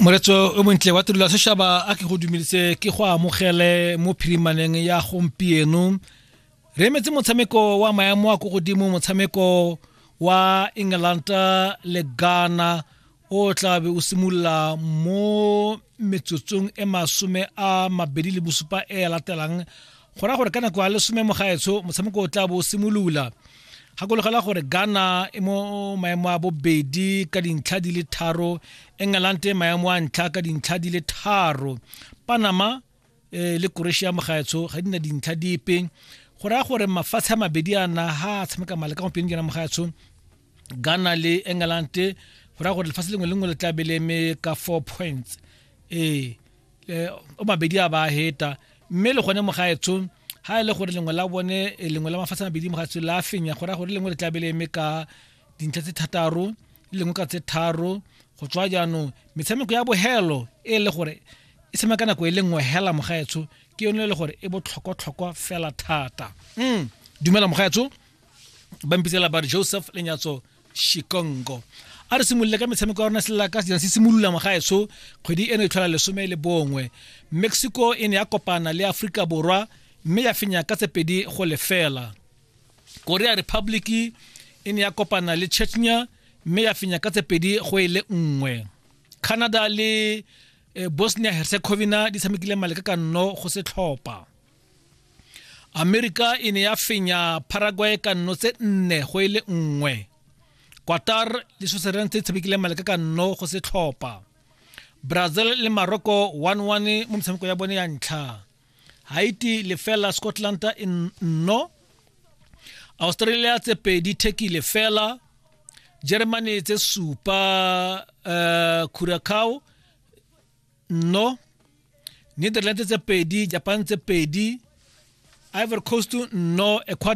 moretso o montle wa tirelo ya sešaba a ke go dumelise ke go amogele mo phirimaneng ya gompieno re emetse motshameko wa maemo a ko godimo motshameko wa england le ghana o tlabe o simolola mo metsotsong e masome a mabedi le bosupa e latelang go raya gore ka nako ya lesome mogaetsho motshameko o tla bo o simolola gakologela gore ghana e mo maemo a bobedi ka dintlha di le tharo england e maemo a ntlha ka dintlha di le tharo panama eh, le croatia mogaetsho ga di na dintlha dipe go raya gore mafatshe a mabedi a na ga a tshameka male ka gompieno kena mogaetsho ghana le england go raya gore lefatshe lengwe le lengwe le tla be le eme ka four points ee eh, o mabedi a ba heta mme le gone mo gaetsong ha e le gore lengwe la bone eh, lengwe la mafatshe mabedi mo gaetsong la fenya go raya gore lengwe le tla be le eme ka dintlha tse thataro le lengwe ka tse tharo go tswa jaanong metshameko ya bohelo e le gore e tshameka ka nako e le nngwe hela mogaetsho ke yone e le gore e botlhokwatlhokwa fela thata mm. dumela mogaetsho ba mpitsela ba re joseph lenyatso shikongo a re simolole ka metshameko ya rona selela ka sejana se simolola mogaetso kgwedi eno e tlhola lesome le bongwe mexico e ne ya kopana le aforika borwa mme ya fenya ka tsepedi go lefela korea republic e ne ya kopana le chechnya mme ya fenya ka tsepedi go e le nngwe canada le eh, bosnia herzegovina di tshamekile maleka ka nno go setlhopha amerika e ne ya fenya paraguay ka nno tse nne go e le nngwe qatar le switzerland tse tshamekileng maleka ka nno go se tlhopha brazil le morocco 1-1 mo metshameko ya bone ya ntlha haiti lefela scotland e nno australia tse pedi turkey lefela germany tse supa uh, curacao no netherlands tse pedi japan tse pedi ivory coast no ecuador